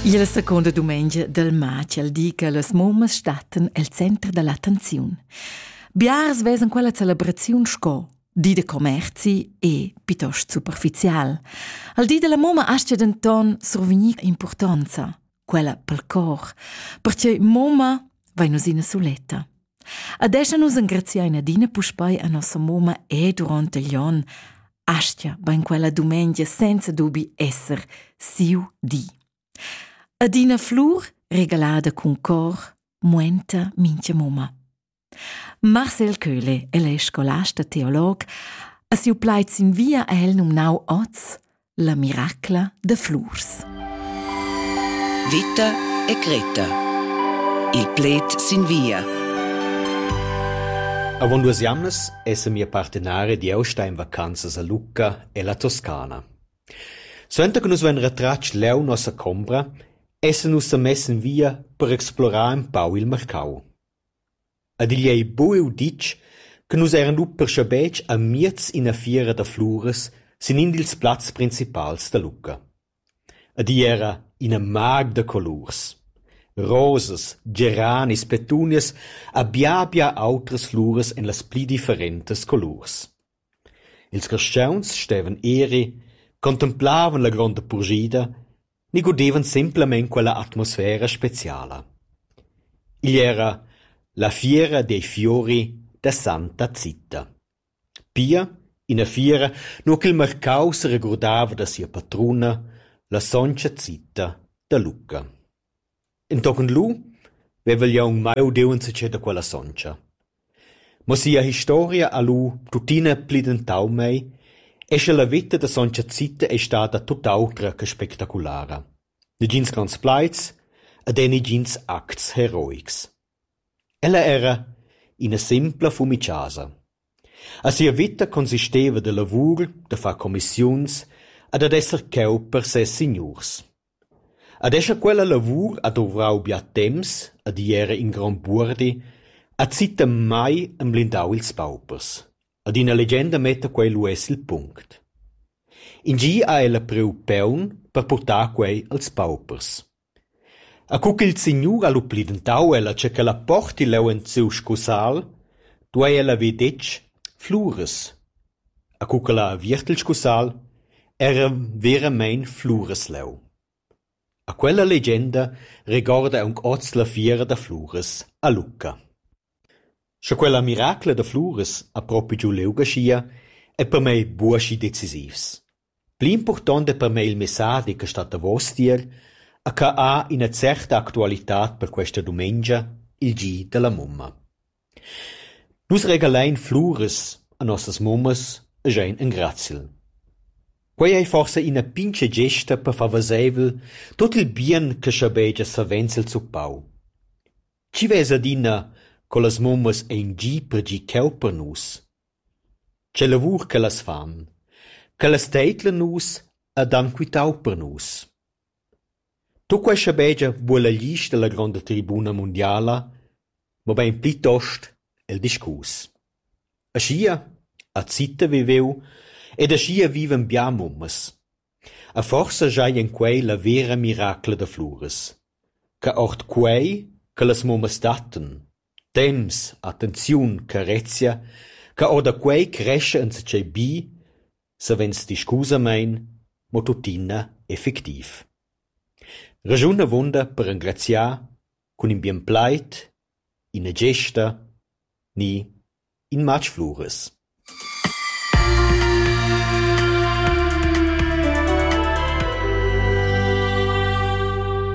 Il seconda dumengia del matg di che las mummas stattan el center dell'attenziun. Biars vesen quella celebraziun sco di de commerci e piuttosto superficial. Al di della mumma asce denton survegnir importanza. quella pel cor, perche moma vai nus ina suletta. Adesso nus engraziain adina puspei a nossa moma e durante gli on, astia ben quella dumengia senza dubi esser siu di. Adina flur regalada cun cor, muenta mincha moma. Marcel Köhle, el è scolast e teolog, ha siu plaid sin via ha el numnau oz la miracla de flurs. Vita e Greta. Il pled sin via. Avon duas jamnas esse mia partenare di Austa in vacanzas a Lucca e la Toscana. Suenter che nus vein retratg leu nossa combra, esse nus sa mess in via per explorar un pau il marcau. Ed igl ei buc uditg che nus eran lu perscabetg amiez ina fiera da fluras sin in dils plazs principals da Lucca. Ed igl era ina mag da colurs. Rosas, geranis, petunias e bia bia autras fluras ein las pli differentas colurs. Ils carstgauns stevan eri, contemplavan la gronda purschida ni gudevan semplamein quella atmosfera speciala. Igl era la fiera dei fiori da santa Zita. Pia ina fiera nua ch'il marcau seregurdava da sia patruna, la sontga Zita da Lucca. Entochen lu vevel jeu aunc mai udiu enzatgei da quella sontga. Mo sia historia ha lu tuttina plidentau mei e sche la veta da sontga Zita ei stada tut autra che spectaculara. Negins gronds plaids ed ei negins acts heroics. Ella era ina simpla fumichasa. A sia veta consisteva da lavur, da far commissiuns e dad esser cheu per ses signurs. Ad escha quella lavur ha duvrau bia temps ed igl era in grond buordi, ha Zittem mai emblindau ils paupers. Ad ina legenda metta quei lu uss il punct. In gi ha ella priu peun per purtar quei als paupers. E cu ch'il signur ha lu plidentau ella che quella porti leu en siu scusal, duei ella haver detg: Fluras. E co ch'el ha aviert il scussal, era veramein fluras leu. E quella legenda regorda aunc oz la fiera da fluras a Lucca. Sche quella miracla da fluras ha propi giu liug aschia, ei per mei buca schi decisivs. Pli impurtonta per mei il messadi che stat davos tier ha cheu ha ina certa actualitad per questa dumengia, il gi dalla mumma. Nus regalein fluras a nossas mummas e schein engraziel. Quei ei forsa ina pintga gesta per far veseivel tut il bien che schabegia savens el zuppau. Chi vesa adina co las mummas ein gi per gi cheu per nus? Tgei lavur ch'ellas fan, ch'ellas teidlan nus ed han quitau per nus. Tuc quei schabegia vulan gli gis dalla gronda tribuna mundiala, mobein plitost il discurs. Aschia ha Zita viveu ed aschia vivan bia mummas. E forsa schai en quei la vera miracla da Fluras, che ord quei che las mummas dattan. Temps, attenziun, carezia, che orda quei crescha enzatgei bi, savens discusamein, mo tuttina effectiv. Raschun avunda per engraziar cun in bien plaid, ina gesta ni In matg fluras.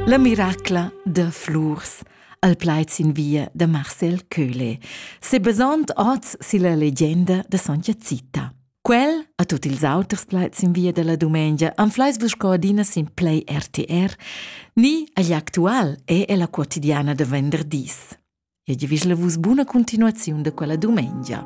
La miracla da flurs al plaid sin via da Marcel Köhle, sebasond oz silla legenda da Sontga Zita. Quel a tut ils auters plaids in via della dumengia anfleis vus co adina sin Play RTR, ni agli actual e ella quotidiana de venderdis. E giavischla vus buna continuaziun de quella dumengia.